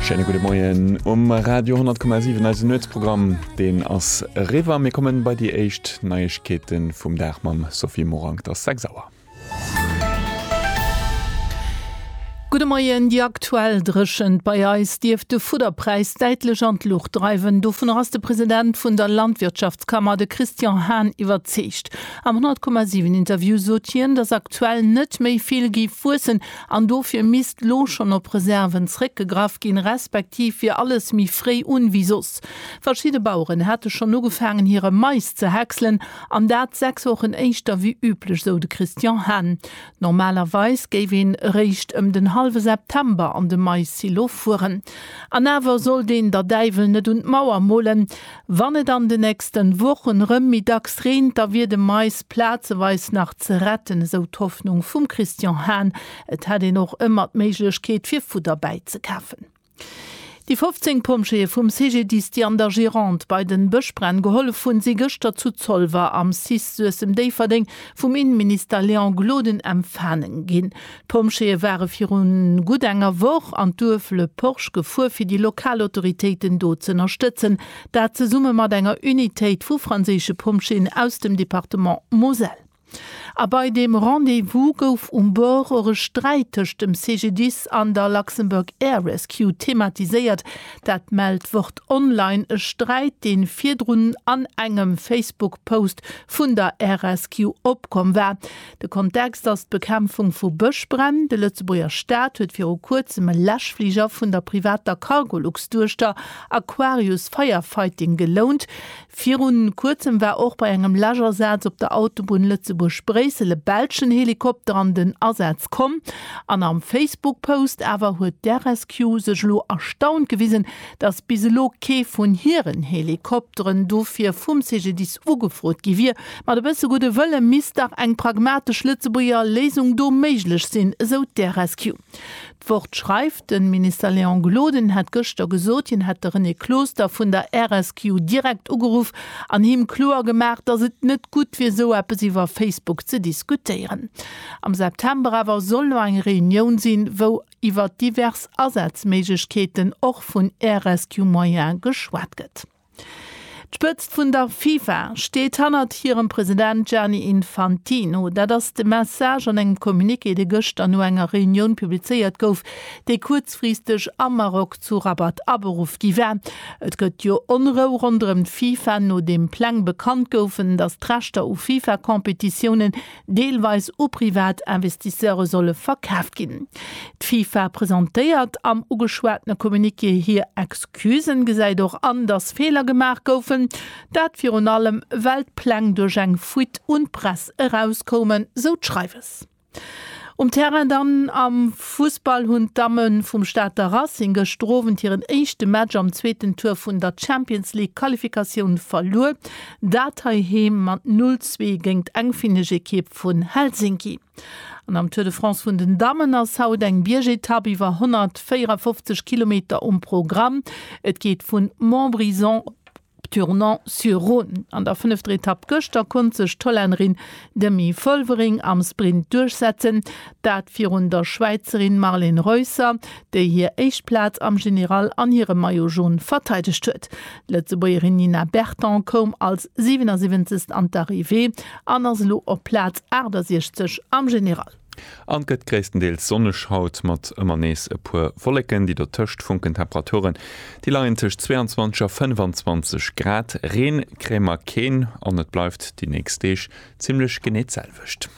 Schéine gudde Moien um Radio 10,7 eise Nuetsprogramm deen ass River. Mir kommen bei déi éischt Neiegkeeten vum Dag mam Sophie Morang der Sex Sauer. Gudde Moien, Déi aktuell Dréchent bei eis dierft de Fudderpräis däitlech an d'Luucht dreiwen. Dovunner ass de President vun der Landwirtschaftskammer, de Christian Hahn iwwerzeegt. Am 10,7 Interview sot hien, datt aktuell net méi vill géif wuessen, An dofir misst lo schonn op Reserven zréckgegraff ginn, respektiv wier alles méi fréi un wéi soss. Verschidde Baueren hate schonn ugefaangen hire Mais ze häckselen, an dat sechs Wochen éischter wéi üblech, sou de Christian Hahn. Normalerweis géif een eréischt ëm den hallwe September an de Mais-Silo fueren. An awer sollt een der Däiwel net un d'Mauer molen. Wann et an de nächsten Wochen rem méi dacks reent, da wier de Mais plazeweis nach ze retten, esou d'Hoffnung vum Christian Hahn. Et hätt een och ëmmer d'Méiglechkeet fir Fudder bäizekafen. Déi 15 Pompjeeë vum CGDIS, déi an der Gironde bei den Bëschbränn gehollef hunn, si gëschter zu Zolwer am cis Suessem-Déifferdeng vum Innenminister Léon Gloden empfaangen ginn. D'Pompjeeë ware viru gutt enger Woch an d'Duerf Le Porche gefuer, fir déi lokal Autoritéiten do z'ënnerstëtzen, dat zesumme mat enger Unitéit vu franséische Pompjeeën aus dem Departement Moselle. A bei deem Rendez-vous gouf um Bord och e Sträit tëscht dem CGDIS an der Luxembourg Air Rescue thematiséiert. Dat mellt Wort Online. E Sträit, dee virdrun an engem Facebook-Post vun der Air Rescue opkomm war. De Kontext ass d'Bekämpfung vu Bëschbränn. De Lëtzebuerger Staat huet viru kuerzem e Läschfliger vun der privater Cargolux-Duechter Aquarius Firefighting gelount. Viru kuerzem war och bei engem Läschasaz op der Autobunn Lëtzebuerg-Bréissel e belschen Helikopter an den Asaz komm. An am Facebook-Post awer huet d'RSQ sech elo erstaunt gewisen, dass bis elo kee vun hiren Helikopteren dofir vum CGDIS ugefrot gi wier. Mat e bësse gudde Wëlle misst dach eng pragmatesch Lëtzebuerger Léisung do méiglech sinn, esou d'RSQ. D'Wort schreift, De Minister Léon Gloden hätt gëschter gesot, hien hätt de René Closter vun der RSQ direkt ugeruff an him kloer gemaach, dass et net gutt wier, esou eppes iwwer Facebook ze diskutéieren. Am September awer soll elo eng Reunioun sinn, wou. iwwert divers Asazméiglechkeeten och vun Air Rescue Moyen geschwat gëtt. D'Spëtzt vun der FIFA steet hannert hirem President Gianni Infantino. Dat ass de Message an engem Communiqué, dee gëschter no enger Reunioun publizéiert gouf, déi kuerzfristeg am Maroc zu Rabat aberuff gi war. Et gëtt jo Onrou ronderëm d'FIFA, nodeem Pläng bekannt goufen, datt d'Rechter u FIFA-Competitiounen, deelweis u privat Investisseure solle verkaaft ginn. D'FIFA presentéiert am ugeschwatene Communiqué hir Excusen, gesäit och an, datt Feeler gemaach goufen, dat virun allem well d'Pläng duerch eng Fuite un d'Press erauskoumen, sou d'Schreiwes. Um Terrain dann, Am Fussball hunn d'Damme vum Stater Racing gëschter Owend hiren éischte Match am zweeten Tour vun der Champions League-Qualifikatioun verluer. Dat hei heem mat 0 zwee géint d'engfinneg Ekipp vun Helsinki. An am Tour de France vun den Dammen ass haut eng Biergetapp iwwer 154 Kilometer um Programm. Et geet vu Montbrison op Tournon-sur-Rhône. An der fënnefter Etapp gëschter konnt sech d'Hollännerin Demi Vollering am Sprint duerchsetzen, dat virun der Schwäizerin Marlen Reusser, déi hir éischt Plaz am General an hire Maillot Jaune verteidegt huet. D'Lëtzebuergerin Nina Berton koum als 77. an d'Arrivée an ass elo op Plaz 68 am General. An gëtt gréisstendeels sonneg haut, mat ëmmer nees e puer Wolleken, déi dotëscht funken. Temperaturen, déi leien tëscht 22 a 25 Grad. Reen kréie mer keen an et bleift déi nächst Deeg zimmlech genee d'selwecht.